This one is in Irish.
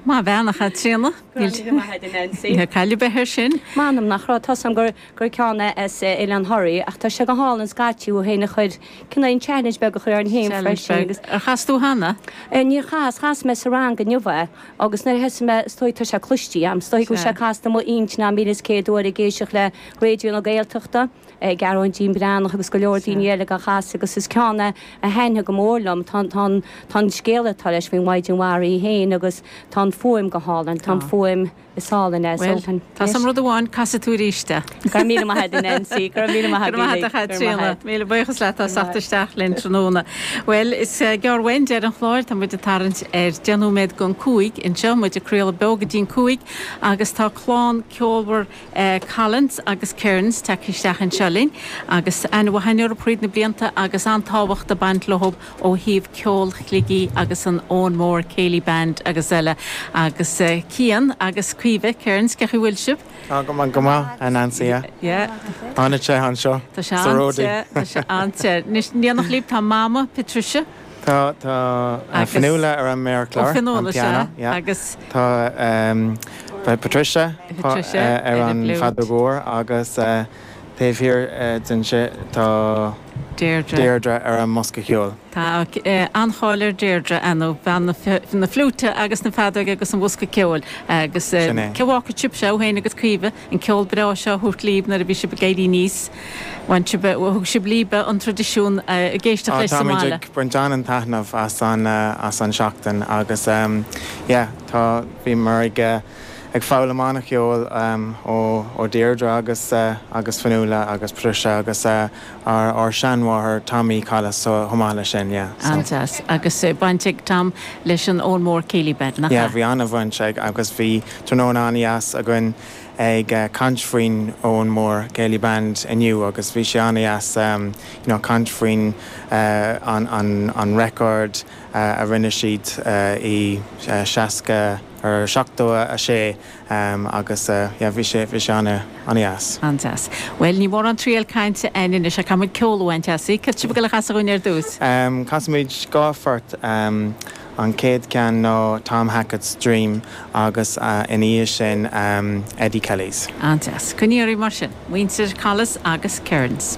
Maith an bhean a Chaitríona. Go raibh maith a'd a Nancy. Ní raibh cailleadh ar bith air sin. M'anam nach raibh, tá 's a'm gur ceann é as Oileán Thoraí ach tá sé go hálainn scaití, thú fhéin a chur, cineál challenge beag a chur orainn fhéin freisin agus. Ar chas tú cheana? Níor chas, chas mé sa rang inniu é agus nuair a thosaigh mé, is dóigh, tá sé cloiste a'm, is dóigh go bhfuil sé casta i mo intinn a'm míle is céad uair ag éisteacht le Raidió na Gaeltachta. Gearóidín Breathnach agus go leor daoine eile dhá chasadh agus is ceann é a thaitneodh go mór liom. Tá an, tá an, tá an scéal atá leis faoin Mhaighdean Mhara í fhéin agus tá an fuaim go hálainn, tá an fuaim, is álainn é so, tá an, tá 's a'm rud amháin, casfaidh tú aríst é. Go raibh míle maith a'd a Nancy, go raibh míle maith a'd uilig. Go raibh maith a'd a Chaitríona, míle buíochas leat as teacht isteach linn tráthnóna. Bhuel is gearr uainn deireadh an chláir, tá muid ag tarraingt ar 10 nóiméad don 5 anseo, muid ag craoladh beo go dtí an 5 agus tá clann ceolmhar Collis agus Kearns tagtha isteach anseo linn agus aithne mhaith a'inn orthu thríd na blianta agus an-tábhacht ag baint leo ó thaobh ceol Shligigh agus an Owenmore Céilí Band agus eile. Agus Cian agus Caoimhe Kearns, cén chaoi a bhfuil sibh? Tá go maith, go maith, a Nancy, a. Yeah. Tháinig sé anseo sa ródaí. Tá sé an-te. Anois, in éineacht libh, tá Mama, Patricia. Tá, tá. Agus. Fionnuala ar an méarchlár. Ó Fionnuala, sea. Agus. Tá Patricia. Patricia. Ar an bhfeadóg agus taobh thiar dínn tá Deirdre. Deirdre ar an mbosca ceoil. Tá an-cháil ar Deirdre, ar ndóigh, bean na fliúite agus na feadóige agus an bhosca ceoil agus. Sin é. Cá bhfágfadh sibhse, thú féin agus Caoimhe. An ceol breá seo a thabhairt líb nuair a bhí sib ag éirí aníos, bhain sib, thug sib líb an traidisiún ag éisteacht leis sa mbaile. Táimid ag baint an-taitneamh as an, as an seachtain agus yeah, tá, bhíomar ag, ag foghlaim an-cheol ó, ó Dheirdre agus, agus Fionnuala agus Patricia agus Ar ár seanmháthair Tommy Collis chomh maith leis sin, yeah, so. An-deas. Agus baint ag Tom leis an Owenmore Céilí Band, nach Yeah, ea? bhí an-bhaint aige agus bhí tráthnóna an-deas againn ag caint faoin Owenmore Céilí Band inniu agus bhí sé an-deas em, you know caint faoin eh an, an, an record a rinne siad eh i seasca or seachtó a sé, agus yeah bhí sé bhí sé an-deas. An-deas. Bhuel, níl mórán triail cainte againn anois, ach caithfimid ceol uainn, teasaí. Céard atá sibh ag goil a chasadh dhúinn ar dtús? Casfaimid dhá phort, an chéad ceann nó Tom Hackett's Dream agus ina dhiaidh sin Eddie Kelly's. An-deas. Coinnígí oraibh mar sin, muintir Collis agus Kearns.